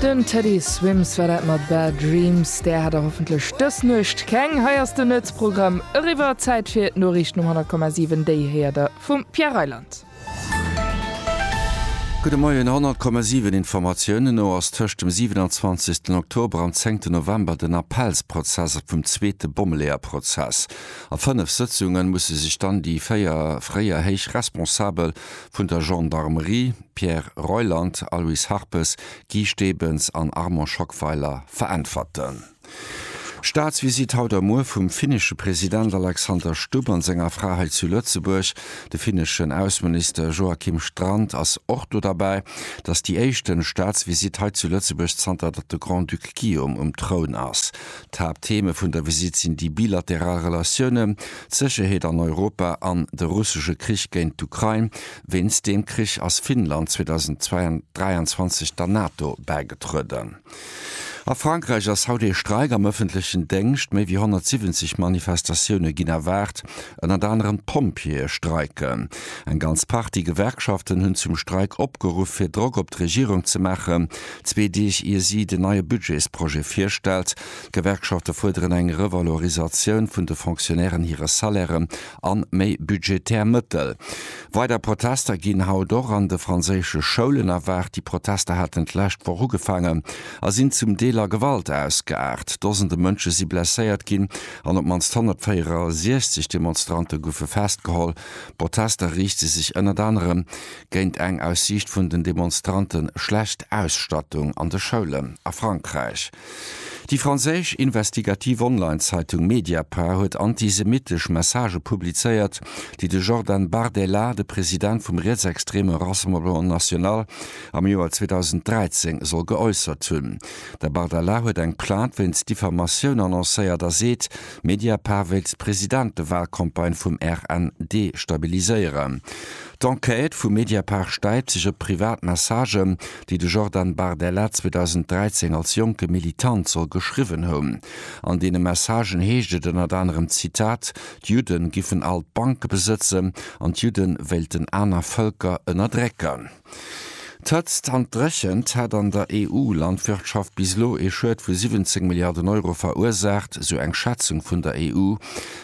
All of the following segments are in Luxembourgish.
Den Teddy Swims war dat mat Bad Dreams. Där hat der hoffentlech dës Nuecht keng. Hei ass den Nuetsprogramm eriwwer. Zäit fir d'Noriichten um 100,7. Déi héiert der vum Pierre Reyland. Gudde Moien, 100,7 Informatiounen, Elo ass tëscht dem 27 Oktober an 10 November den Appellsprozess vum zweete Bommeleeër-Prozess. A fënnef Sëtzunge musse sech dann déi véier fréier héich Responsabel vun der Gendarmerie, Pierre Reuland, Aloyse Harpes, Guy Stebens an Armand Schockweiler veräntwerten. Staatsvisitt haut a muer vum finnesche President Alexander Stubb an senger Fra hei zu Lëtzebuerg. De finneschen Ausseminister Joakim Strand ass och do derbäi. Et ass déi éischten Staatsvisitt hei zu Lëtzebuerg zanter datt de Grand-Duc Guillaume um Troun ass. D'Haapttheme vun der Visitt sinn déi bilateral Relatiounen, d'Sécherheet an Europa an de russesche Krich géint d'Ukrain. Wéinst deem Krich ass Finnland 2023 der NATO bäigetrueden. A Frankräich ass haut ee Streik am ëffentlechen Déngscht, méi wéi 170 Manifestatioune ginn erwaart, ënnert anerem d'Pompjeeë streiken. Eng ganz Partie Gewerkschaften hunn zum Streik opgeruff, fir Drock op d'Regierung ze maachen, zwee Deeg ier si den neie Budgetsprojet virstellt. D'Gewerkschafte fuerderen eng Revalorisatioun vun de Fonctionnairen hire Salairen, an méi budgetär Mëttel. Weider Protester ginn haut och an de franséische Schoulen erwaart. Déi Protester haten d'lescht Woch ugefaangen a sinn zum Deel a Gewalt ausgeaart. Dosende Mënsche si blesséiert ginn an op d'mannst 164 Demonstrante goufe festgeholl. D'Protester riichte sech ënnert anerem géint eng aus Siicht vun den Demonstrante schlecht Ausstattung an de Schoulen a Frankräich. Déi franséisch investigativ Online-Zeitung Mediapart huet antisemittesch Messagë publizéiert, déi de Jordan Bardella, de President vum rietsextreme Rassemblement National, am Joer 2013 soll geäussert hunn. De Bardella huet eng Plainte wéinst Diffamatioun annoncéiert a seet, Mediapart wéilt d'Presidentewalcampagne vum RN destabiliséieren. D'Enquête vu Mediapart stäipt sech op privat Messagen, déi de Jordan Bardella 2013 als jonke Militant soll geschriwwen houn. An deene Messagen heescht et ënnert anerem, Zitat, D'Judden giffen all d'Banke besëtzen an d'Judden wéilten aner Vëlker ënnerdrécken. D'Hëtzt an d'Dréchent hätt an der EU-Landwirtschaft bis elo ee Schued vu 17 Milliarden Euro verursaacht, sou eng Schätzung vun der EU.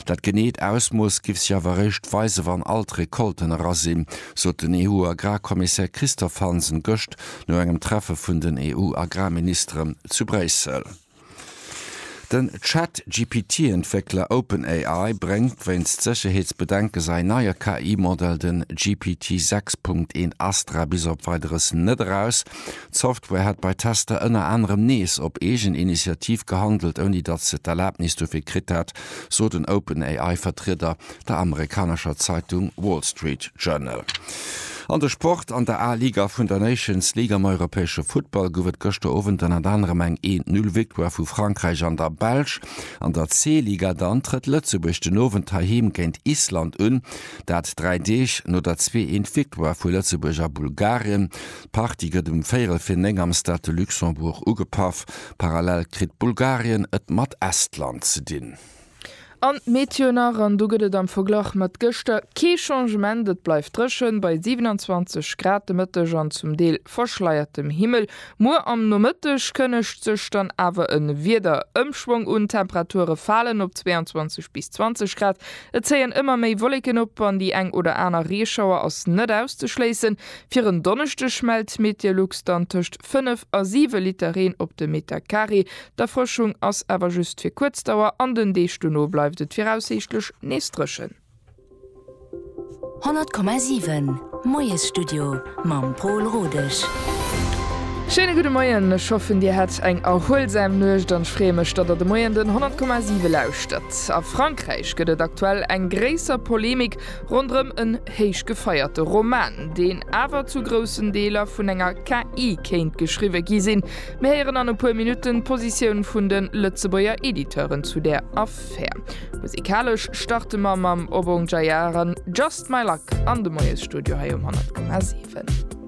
Dat geneet Ausmooss giff sech awer eréischt weise wann all d'Recolten era sinn, sot den EU-Agrarkommissär Christophe Hansen gëscht no engem Treffe vun den EU-Agrarministeren zu Bréissel. Den Chat-GPT-Entwéckler OpenAI bréngt wéinst Sécherheetsbedenke säin neie KI-Modell, den GPT 6.1 Astra, bis op Weideres net eraus. D'Software hätt bei Tester ënner anerem nees op eegen Initiativ gehandelt, ouni datt se d'Erlabnis dofir kritt hätt, sot en OpenAI-Vertrieder der amerikanescher Zeitung Wall Street Journal. An de Sport, An der A-Liga vun der Nations League am europäesche Futtball gouf et gëschter Owend ënnert anerem eng Eent-Null-Victoire vu Frankräich an der Belsch. An der C-Liga dann trëtt Lëtzebuerg den Owend heiheem géint Island un, dat dräi Deeg no der Zwee-Eent-Victoire vu Lëtzebuerg a Bulgarien. D'Partie gëtt um véierel fir néng am Stade de Luxembourg ugepaff. Parallel kritt Bulgarien et mat Estland ze dinn. An d'Meteo nach, an do gëtt et am Verglach mat gëschter kee Changement. Et bleift dréchen bei 27 Grad de Mëtteg an zum Deel verschleiertem Himmel. Muer am Nomëtteg kënnegt sech dann awer e Wiederëmschwong un, d'Temperature falen op 22 bis 20 Grad, et zéien ëmmer méi Wolleken op an déi eng oder aner Reeschauer ass net auszeschléissen. Fir en Donneschdeg mellt Meteolux dann tëscht 5 a 7 Liter Reen op de Metercarré, D'Erfrëschung ass awer just fir kuerz Dauer, an den Deeg dono bleift et viraussiichtlech nees dréchen. 100,7 Moiesstudio mam Pol Rodesch. Schéine gudde Moien, ech hoffen dir hat eng erhuelsam Nuecht an ech freeë mech datt der de Moien den 100,7 lauschtert. A Frankräich gëtt et aktuell eng gréisser Polemik ronderëm en héich gefeierte Roman, deen awer zu groussen Deeler vun enger KI kéint geschriwwe gi sinn. Mir héieren an e puer Minutten d'Positioun vun de Lëtzebuerger Editeuren zu där Affär. Musikalesch starte mer mam Obong Jayar an Just My Luck an de Moiesstudio hei um 100,7.